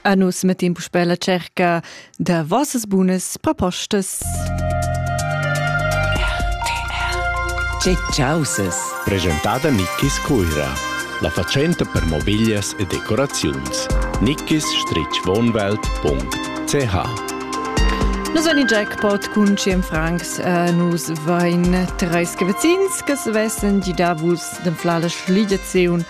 A nus mettin puspè la cerca da vossas bunas propostas. Che ciauses! Presentada Nickis Cuira, la fatschenta per mobiglias e decoraziuns. nickis-wohnwelt.ch Nus vein in jackpot cun ciem francs. Uh, nus vein treis cavazins che se vessen di davus d'anflar la schligiaziun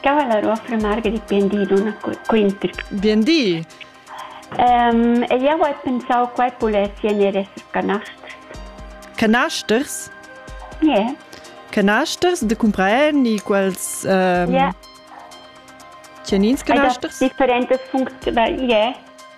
Cavallaro affirmar che bien di donna quinter. Bien di. Um, e io ho pensau quai pulessi en esser canasters. Canasters? Yeah. Canasters de compreni quels um, yeah. Tjenins canasters? Differentes funzioni, yeah.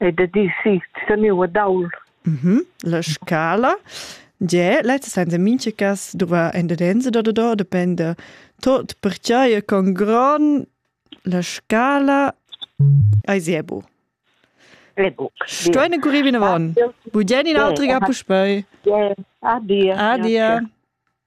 e da di si seniu ad aul. Mm -hmm. La scala Ge, lezza senza mincha cas duva en dedenza da do dependa tot perchai con gron la scala ai zebu. Sto eine guri bin avon. Bugen in altriga puspei. Adia. Adia.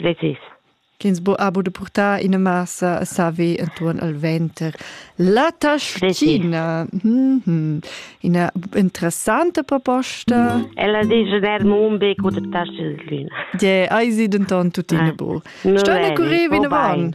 Precis. Ch'ins bo abo da purtar ina massa a saver entuorn al venter. La taschina. Mhm. Ina interessanta proposta. Ella dice der Mumbe cu taschel lüna. Ja, ai si denton tuttina bo. Sta ne curri vinavon?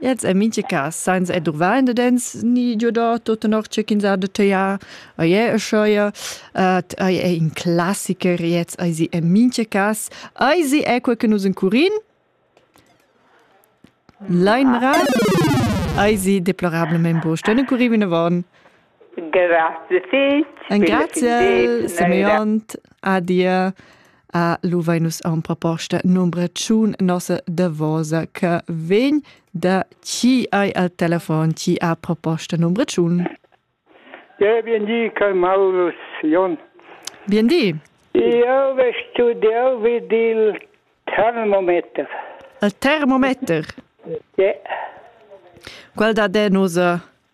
Ins è mintga cas sainza edurvar indedens ni giodà tut tenor tge ch'ins ha da tagliar. Ei è uscheia, ed ei è in classicher, gliez eisi en mintga cas. Eisi è quei che nus encurin. Leinrad eisi deplorablamein buc ston encurir vinavon. Engraziel Simeont adia a Luvainus a un proposta numbra tschun nossa davosa che vegn da chi hai al telefon chi ha proposta numbra tschun. Ja, bien di, Kai Maurus Jon. Bien di. Io ve studiau vid il termometer. Il termometer? Ja. Qual da de nosa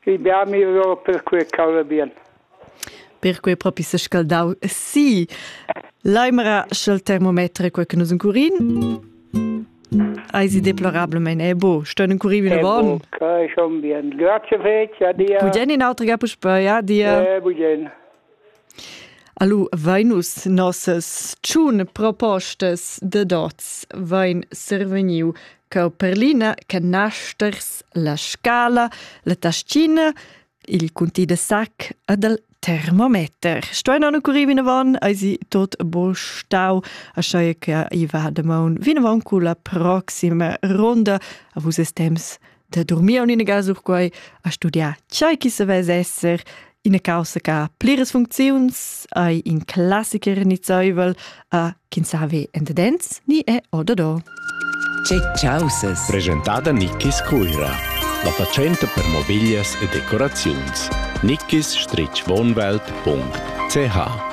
Fidar mi ora per quei cavla bien. Perquei propi sescaldau. Sì, Leimera sch'el termometer è quel che nus encurin. Eisi deplorablemente è bo, ston encurir vinavon. Che schon bien. Grazie fece, adia. Bugen in altra ga puspei, adia. Eh, bugen. Alu vainus nossas tschun propostas da dots vain survegniu cau per l'ina che naschers la scala, la taschina, il cunti da sac ed il termometer. Stuein non occurir vinavon, eisi tot bo stau, aschaia che i va damaun vinavon cu la proxima ronda a vus es temps da dormir en ina casa sur quai, a studiar tgei che sa vess esser ina causa che pliras funcziuns hai in classiker nizzaivel a chi savi endedens ni è ododò. C'è causes. Presentada Nickis Cuira. La fatschenta per mobiglias e decoraziuns. Nickis-wohnwelt.ch